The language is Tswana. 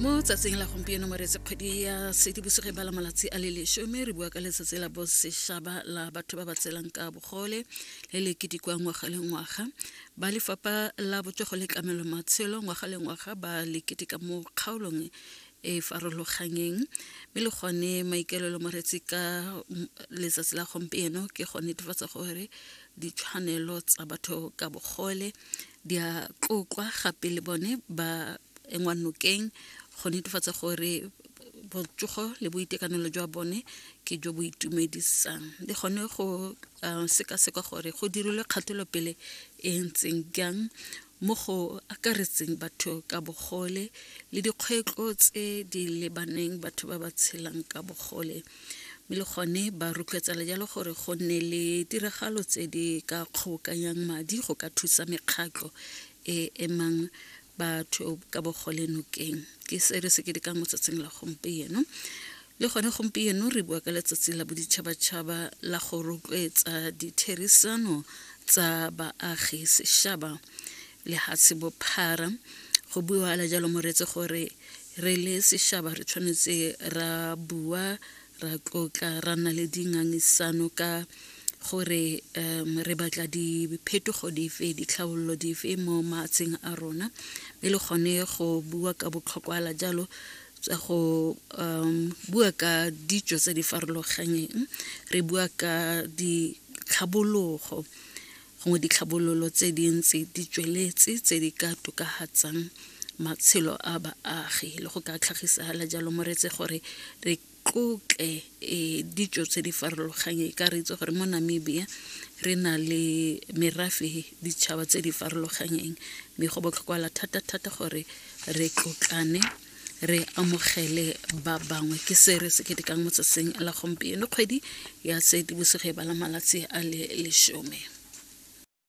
mo tsatsing la gompieno moretse kgwedi ya sedibosegeng ba la malatsi a le lesome re bua ka letsatsi la bosešaba la batho ba ba tselang ka bogole le le kedikwa ngwaga le ngwaga ba lefapha la botsogo le tlamelo matshelo ngwaga le ngwaga ba le ketika mo kgaolong e farologanyeng mme le gone maikaelelo moretsi ka letsatsi la gompieno ke go netefatsa gore ditshwanelo tsa batho ka bogole di a tlotlwa gape le bone ba engwa nokeng go netefatsa gore botsogo le boitekanelo jwa bone ke jo bo itumedisang le gone go sekaseka gore go dirilwe kgatelopele e ntseng jang mo go akaretseng batho ka bogole le dikgwetlho tse di lebaneng batho ba ba tshelang ka bogole mme le gone ba rotloetsa le jalo gore go nne le tiragalo tse di ka kgobokanyang madi go ka thusa mekgatlho e emang batho ka bogole nokeng ke se re se ke di ka motsatsing la gompieno le gone gompieno re bua ka letsatsi la boditšhabatšhaba la go rotloetsa ditherisano tsa baagi sešaba le ga se bophara go buala jalo moretse gore re le sešaba re tshwanetse ra bua ra tlotla ra nna le dingangisano ka gore um re batla diphetogo dife ditlhabololo dife mo maatsheng a rona e le gone go bua ka botlhokwala jalo tsa go um bua ka ditso tse di farologanyeng re bua ka ditlhabologo gongwe ditlhabololo tse dintsi di tsweletse tse di ka tokafatsang matshelo a baagi le go ka tlhagisagala jalo moretse gore re tlotle um ditso tse di farologanye ka re itse gore mo namibia re na le merafe ditšhaba tse di farologanyeng mme go botlhokwala thata-thata gore re tlotlane re amogele ba bangwe ke se re se ketekang mo tsatsing la gompieno kgwedi ya seetibosigo e bala malatsi a le lesome